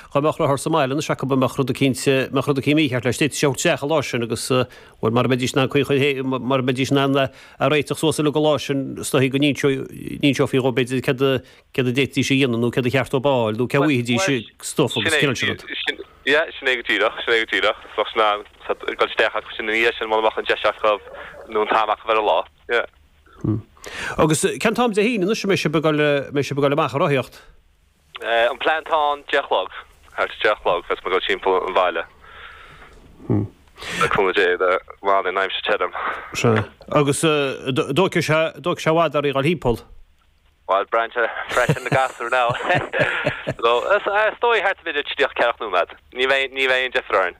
Dhá mbeadh rothar sa mbaile anois acub a mbeadh rud eicínt, a mbeadh rud eicínt mícheart leis. D'fhéadfaidís é a thabhairt isteach an lá sin agus, bhuel, mara mbeidís in ann caoi chun, mara mbeidís in ann é a réiteach suas uilig an lá sin is dóigh go n-inseoidh, n-inseofaí dhó b'fhéidir céard a, céard a d'fhéadfaidís a dhéanamh nó céard ba cheart dhóibh a fháil nó cé uaidh a d'fhéadfaidís stuif agus an cineál sin rud. Yeah, sin é go díreach, sin é go díreach. Is bheidís in ann, say, dul isteach acu sin ina dhiaidh sin mura mbeadh an deis acu nó an t-am acu ar an lá. Yeah. Hmm. Agus cén t-am Dé hAoine anois a mbeidh sibh ag dul, mbeidh sibh ag dul amach ag rothaíocht? An plean atá ann, deich a chlog, thart ar deich a chlog is muid ag dul timpeall an bhaile. Le cúnamh Dé go mbeidh an aimsir tirim. Sea, agus an dtógfaidh sé, an dtógfaidh sé i bhfad oraibh a dhul timpeall. Bhuel, braitheann sé freisin na gasúir ná. Is dóigh thart ar an uile tríocha ceathracha nóiméad. Ní bheidh, ní bheidh aon deifir orainn.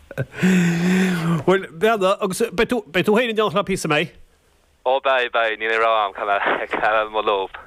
Bhuel, beidh agus beidh tú féin in éineacht leob is dócha, an mbeidh. Ó beidh, beidh, níl aon rogha agam ach coinneáil leob.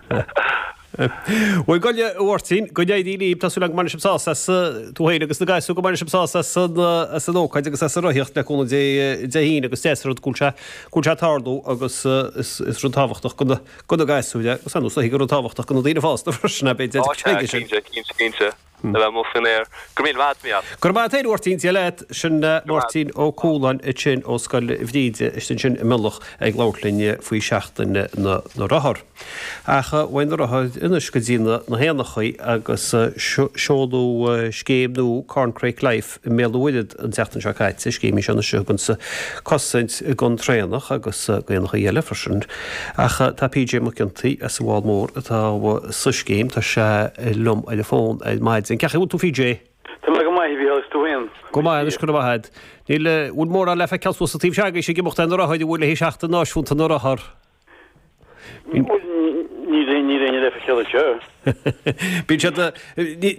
Bhuel, gabh i leith a Mháirtín, go n-éirí libh, tá súil agam go mbeidh sibh sásta as, tú féin agus na gasúir, go mbeidh sibh sásta as an, as an ócáid agus as an rothaíocht le cúnamh Dé Dé hAoine agus deas an rud go bhfuil sé, go bhfuil sé ag tarlú agus is, is rud tábhachtach go na, go na gasúir é agus tá is dóichí gur rud tábhachtach go na daoine fásta freisin, ab é? Tá, cinnte, cinnte, cinnte. Hm. Maith an fear. Go raibh míle maith agat a Mhícheál. Go raibh maith agat a Mháirtín, Dia leat. Sin Máirtín Ó Cualáin ansin ó Scoil Bhríde istigh ansin i Mionlach ag labhairt linn faoi Seachtain na Rothar. Ach uaidh na rothair anois go dtí na héanachaí agus seoladh scéim nua Corncrake Life. i mBéal an Mhuirthead an tseachtain seo caite. Scéim í seo anois a thugann cosaint don traonach agus éanachaí eile freisin. Ach tá PJ Mac Ciontaoí as an bhFál Mór atá sa scéim, tá sé liom ar an bhfón ar maidin. Cén chaoi a bhfuil tú PJ? Tá mé go maith, a Mhícheál, agus tú féin? Go maith, anois, go raibh maith agat. Níl, bhfuil mórán le feiceáil suas sa taobh seo agaibhse ag imeacht ar na rothair, an bhfuil, le haghaidh Seachtain Náisiúnta na Rothar? Níl éinne le feiceáil anseo. Bíonn siad,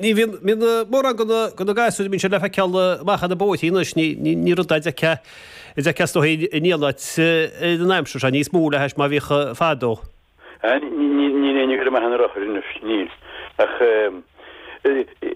ní bhíonn mórán go na gasúir, bíonn siad le feiceáil amach ar na bóithríní anois, ní rud a d'fheicfeas tú in aon áit in an aimsir seo, níos mó le hais mar a bhíodh fadó. Níl éinne amach ar an rothar anois, níl, ach.